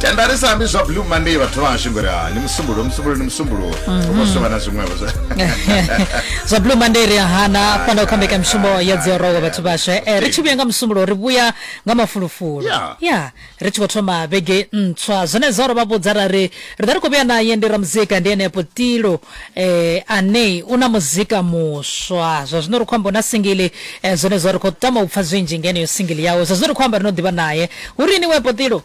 tenda ri sa ambi zwa blue monday vhathu vha hashu ngori ah, ni musumbulo musumbulo ni musumbulo Mhm. umo sivha na zwiṅwevho zwa zwa blue monday ri ahana fana u kha mbekamishumo ya dziorowo vhathu vhaswe Eh, ri tshi vhuya nga musumbulo ri vhuya nga mafulufulu Yeah. ya ri tshi khou thoma vhege ntswa zwenezwo ro vha vhudza ra ri ri ḓa ri khou vhuya naye ndi ramuzika ndi ene potilo eh anei u na muzika muswa zwa zwino ri khou amba una singili eh, zwone zwa ri khou tama u pfa zwinzhi nga heneyo singili yawe zwa zwino ri khou amba ri no ḓivha naye hu ri ni we poṱilo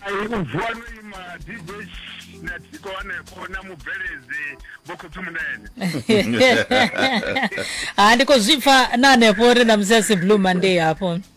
Ai, u vuwa no ima dj na tiko hanefho na mubveledzi vho khotsi munene ha ndi khou zwi pfa na hanefho ri na musesi blue monday hafho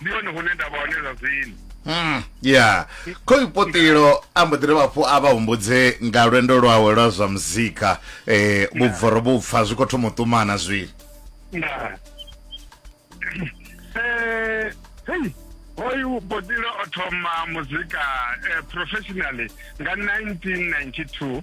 ndi hone hune nda vha hone zwa zwino Mm, yeah khoyu potilo a mbo ḓi dovha hafhu a vha humbudze nga lwendo lwawe lwa zwa muzika eh vhubvoro vhupfa zwi khou thoma u ṱumana zwino ndaa Eh, hei hoyu botilo o thoma muzika eh, professionally nga 1992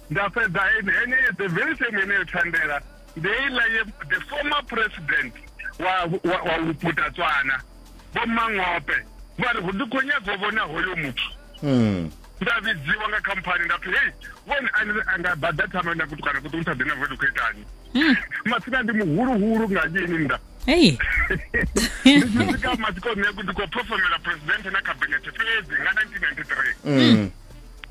Nda fhedza e, heneyo the very same yeneyo thandela ndi heiḽa ye the former president wa wa, wa luputa tswana vho mangope vha ri ndi khou nyaga u vhona hoyo muthu mm. nda vhidziwa nga khamphani nda pfi hei vhone anga by that time nda kutukana kuṱuku ni sa ḓi na vhone khou itanyi hmm. masina ndi muhuluhulu nga ngini nnḓa nditshika matsiko nṋe ndi khou phofomela president na cabinet fhedzi nga 1993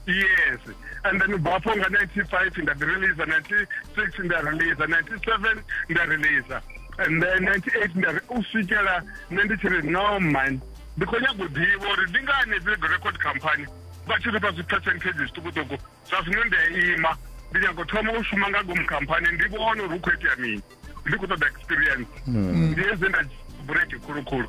yes and then ubvafo nga 95 ndareleasa 96 ndareleasa 97 ndareleasa and then 98 ndari u swikela nṋe ndi tshi ri no man ndi khou nyago ḓivha uri ndi ngani vhilgo record company vha tshi ri fha zwi percentage zwiṱukuṱuku zwa zwino ndi a ima ndi nyago thoma u shuma nga ngomu company ndi vhone uri hu khou itea mini ndi khou ṱoḓa experience hmm. ndi hezwe nda break khulukhulu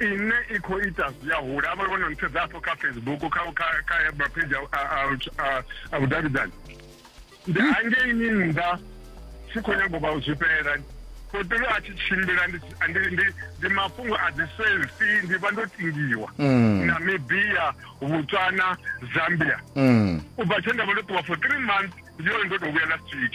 ine i khou ita zwi a hula avha vho no ntsedzaa hafho kha facebook kha kha kha mapage a vhudavhidzani ndi hmm. hangeini nnḓa tshi khou nyago vha zwi fhela fotolo a tshi tshimbila ndi mafhungo a dzi selfi ndi vha ndo tingiwa hmm. namibia botswana zambia hmm. u bva tshe nda vha ndo ṱuwa for three months ndi yone ndo to vhuya last week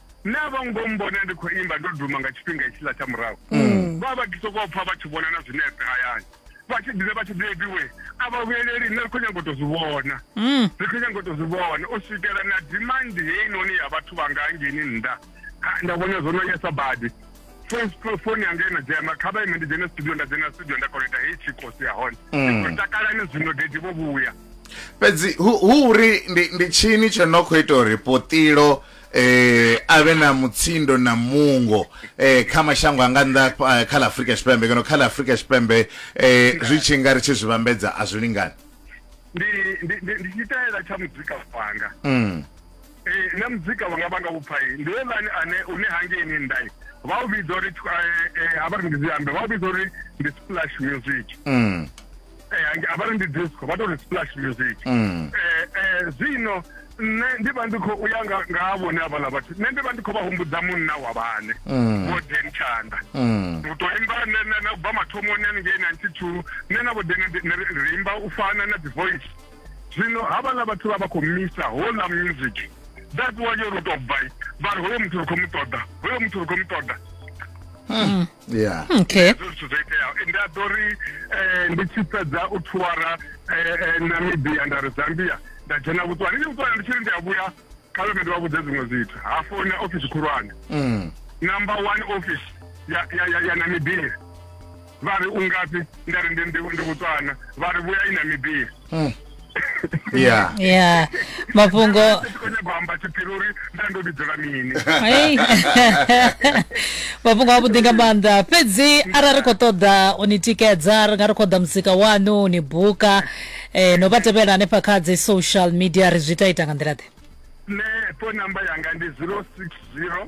nṋe a vho ngo mbona ndi khou imba ndo duma nga tshifhinga hetshiḽa tsha murahu vha vha tshi sokou pfa vha tshi vhona na zwinepe hayani vha tshi ḓivhe vha tshi ḓibiwe a vha vhuyeleli nṋe ri khou nyanga u tou zwi vhona ri khou nyanga u tou zwi vhona u swikela na dimandi heinoni ya vhathu vha nga hangeini nnḓa Ha, nda vhona zwo no yesa badi Fo- foni yanga ino dzema kha vha ime ndi dzhene studio nda dzhena studio nda koleta hei tshikosi ya hone Uri takalani zwino dedi vho vhuya fhedzi hu hu uri ndi, ndi tshini tsho no khou ita uri potilo eh a vhe na mutsindo na mungo eh kha mashango anga nnḓa eh, kha ḽa afurika tshipembe ngeno kha ḽa afurika tshipembe eh zwi tshi nga ri tshi zwi vhambedza a zwi lingani ndi ndi ndi ndi tshitaela tsha muzika wanga mm. eh na muzika wanga vha nga vhupfai ndi wevhani ane une hangeini ndai vha u vhidza uri eh, eh, a vha ri ndi zwi ambe vha u vhidza uri ndi splash music mm. eh, a vha ri ndi disco vha to ri splash music mm. eh, eh, zwino nṋe ndi vha ndi khou ya nga ha vhone havhaḽa vhathu nṋe ndi vha ndi khou vha humbudza munna wa vhane mm. vho den tshanda mm. u to imba na bva mathomoni haningei ninety two nṋe na vho den ri imba u fana na the voice zwino havhaḽa vhathu vha vha khou misa hola music that's why yo ri to bva vha ri hoyo muthu ri khou mu ṱoḓa hoyo muthu ri khou mu ṱoḓa hmm. yeah hmm, okay zwo zwithu zwo iteaho ende a ḓo ri um ndi tshi fhedza u thuwara um namibia nda ri zambia nda dzhena vhuṱwani ndi vhuṱwani ndi tshi ri ndi a vhuya kha vheme ndi vha vhudze dziṅwe zwithu ha founa ofisi khulwane hmm. number one office ya, ya, ya, ya namibia vha ri u ngafhi nda ri ndi vhuṱwana vha ri vhuya i namibia Mm. yeah ya mafhungo Asi tikone kuhamba chipirori ndandobidzela mini Hai. mafhungo avhuḓi nga maanḓa fhedzi arali ri khou ṱoḓa u ni tikedza ri nga ri khou ḓa muzika wanu ni buka eh, no vha tevhela hanefha kha dzi social media ri zwi ita ita nga nḓila ḓe ne phone number yanga ndi 060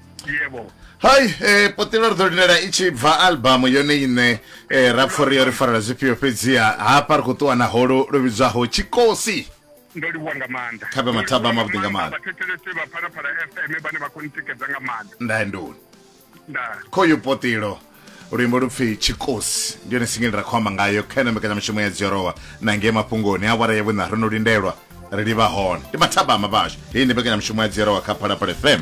yebo hai eh, potela ri ḓo lindela i tshi bva albamu yone iṋe eh, ra pfha uri yo ri farela zwifhio fhedziha hafha ri khou ṱuwa na holo lwo vhidzwaho tshikosi ndo livhuwa nga maanḓa Khabe mathaba a mavhuḓi nga maanḓa. vhathetshelesi vha phalaphala fm vhane vha khou ntikedza nga maanḓa ndae nduni nda khoyo potilo luimbo lupfi tshikosi ndi yone singeni ra khou amba ngayo kha ino mbekanyamushumo ya dziorowa na ngei mafhungoni a awara ya vhuṋa ro no lindelwa ri livha hone ndi mathabama vhashu hei ndi mbekanyamushumo ya dziorowa kha phalaphala fm